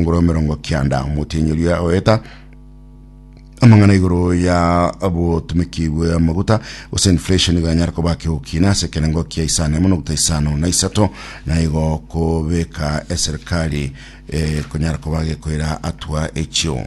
ngoro emerongo kianda omotienyeru ya oeta amang'ana igoro ya obotumiki bwe amaguta gose inflation igo yanyara koba kegokina ase ekerengo kia isano emo nokta isano na isato na igo kobeka eserikali eh, konyara koba gekoira atua echio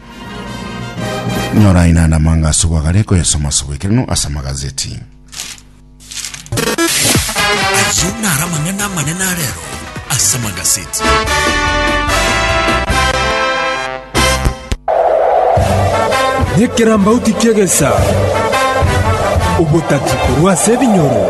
Nyora aina ande amang'a ase obwagare koyasoma ase obwekeranu ase amagazeti. Ayio naro amang'ana amanene arero ase amagazeti. Nyekirambauti ki'egesa, obotati korwa ase ebinyoro.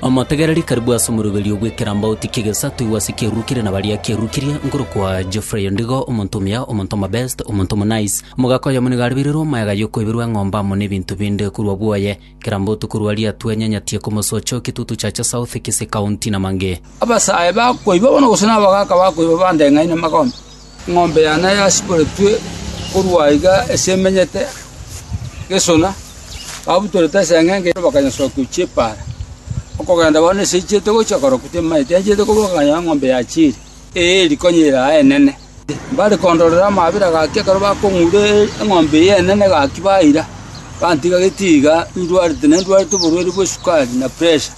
Omotegereri karibu ase omoroberio bw'ekirambauti ki'egesa toigwe ase Keruru keria na baria, keruru keria nkorokwa Geoffrey Ondigo, omonto omuya, omonto omobest, omonto omonice. Omogaka oyomo nigo aribeirwe omoyaga yokoiberwa eng'ombe amo nebinto binde korwa bwoye. Kera mbotuko rwa ria twenyanyatie komosocha o Kitutu Chacha South, Kisii County, na mang'e. Abasae bakoiba bono gose nabagaka bakoiba bande ng'ai na magombe, Eng'ombe yane yasiboretwe korwa aiga ase emenyete gesona, babutorete ase eng'enga eye, bakanyesokia gochia epaara. Okogenda kwabo nase echiete gochia korokwa timaete, yanchiete kobua bakanyora eng'ombe yachiire, eye eri konya ere aa enene. Mbare kondorera amaabera gaki ekero bakong'ura eng'ombe eye enene gaki baira, bantiga gete iga indwarete, na indwarete oborwaire bw'esukari na pressure.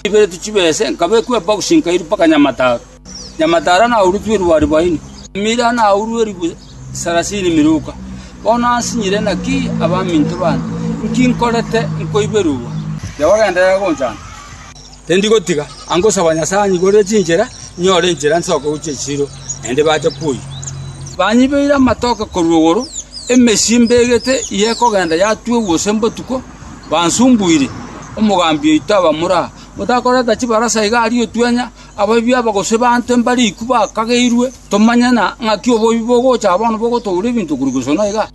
Chibereti chibese, nkabekwa ebokisi nkairwa mpaka Nyamataro. Nyamatara naurutwe erwari baini, mira naurwe eribu sarasini miruka. Bono ansinyire naki abaminto baane? Inki nkorete nkoigwe rugwa? Jehova genderera gonchanda, tindigotiga. Angosaba Nyasae anyigorere chinchera, inyore enchera nsoke gochia esiro, naende bache kwoyio. Banyibeire amatoke korwa igoro, emesio imbegete eye ekogenda yatuegwa gose mbotuko, bansumbuire. Omogambi oito abamura, motakoreta chibarasa iga aria otwenya, Abaibwi aba gose baanto mbare ikwa bakageirwe, tomanye na ng'aki oboibi bogocha aa bono bogotoura ebinto korwa igosana iga.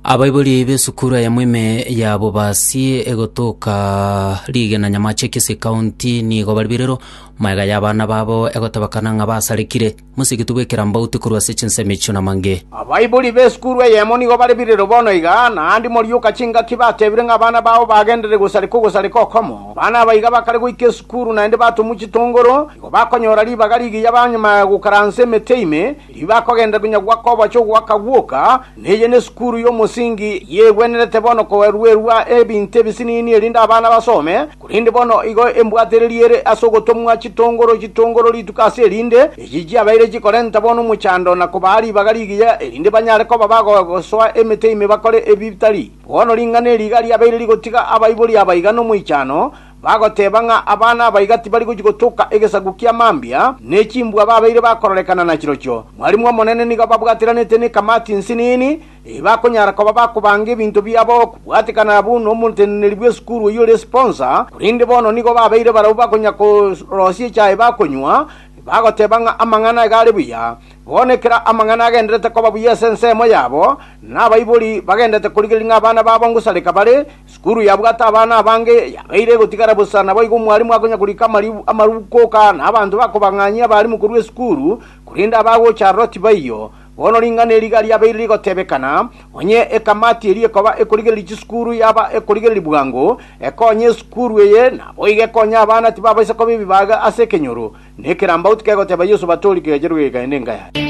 Abaibori b'esukuru eyemo ime ya Bobasi egotoka rigena Nyamache Kisii County nigo bari birero, magega y'abana babo egotebakana ng'a basarekire. Mosegetwe goikera mbauti korwa ase chinsemo echio namange. Abaibori b'esukuru eyemo nigo bare birero bono iga, naende morioka chingaki batebire ng'a abana bao bagenderere gosareka ogosareka okomo. Abana aba iga bakare goika esukuru naende batomwa chitongoro, nigo bakonyora ribaga rigiya ba nyuma ya gokaransa emete ime, erio bakogenderera konya goaka oboche ogoaka gwoka, na eye nesukuru y'omosingi eyegwenerete bono koeruerwa ebinto ebisinini erinde abana basome. Korende bono igo embwatereri ere ase ogotomwa chitongoro chitongoro rituko ase erinde, echi chiabeire chikorenta bono omochando na kobaa ribaga rigiya, erinde banyare koba bagosoa emete ime bakore ebitari. Bono ring'ana eri iga riabeire rigotiga abaibori abaiga nomoichano, bagoteba ng'a abana abaiga tibari gochia gotoka egesaku kia mambia, ne chimbwa babeire bakororekana nachirochio. Mwarimu Omonene nigo babwatiranete nekamati nsinini, Tibakonyara koba bakobanga ebinto biabo kobwatekana buna omoteneneri bw'esukuru oyio ore esponsa, korende bono nigo babeire barabwo bakonya korosia echae bakonywa, bagoteba ng'a amang'ana iga are buya. Bono ekero amang'ana agenderete koba buya ase ensemo yabo, nabaibori bagenderete korigereria ng'a abana babo ngosareka bare, esukuru yabwate abana abange yabeire egotigara bosa naboigo omwarimu akonya korika amaruuko na abanto bakobang'anyia abarimu korwa esukuru, korende abagocha aroro tibaiyo. Bono ring'ana eri riga riabeire rigotebekana, onye ekamati eria ekoba ekorigereria chisukuru yaba ekorigereria bwango, ekonye esukuru eye, naboigo ekonye abana tibabaisa koba ebibaga ase ekenyoro, na ekerambauti kegoteba Yeso batori kegacherwe kegakaenda enka yaye.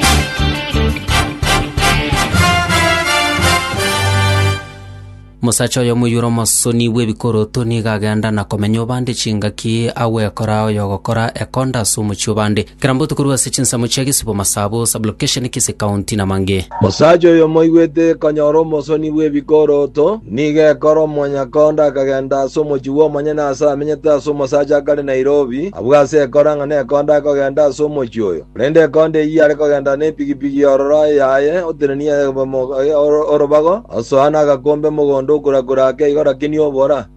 Mosacha oyo omoyure omosoni bw'ebikoroto nigo agenda na komenya obande chingaki agwekora oyogokora ekonda ase omochie obande. Kera mbotuko rue ase chinsemo chia gesibo, masabo, sub-location, kisi, county na mange. Mosacha oyo omoigwete konyora omosoni bw'ebikoroto nigo ekora omonyakonda akagenda ase omochie bw'omonyene ase amenyete ase omosacha akare Nairobi abwo ase ekora ng'a nekonda akogenda ase omochie oyo. Korende ekondo eyio yare kogenda nepigipigi y'ororo yaye oteneni orobago, osoa nagakombe mogondo okura-kura ake igoro akini obora.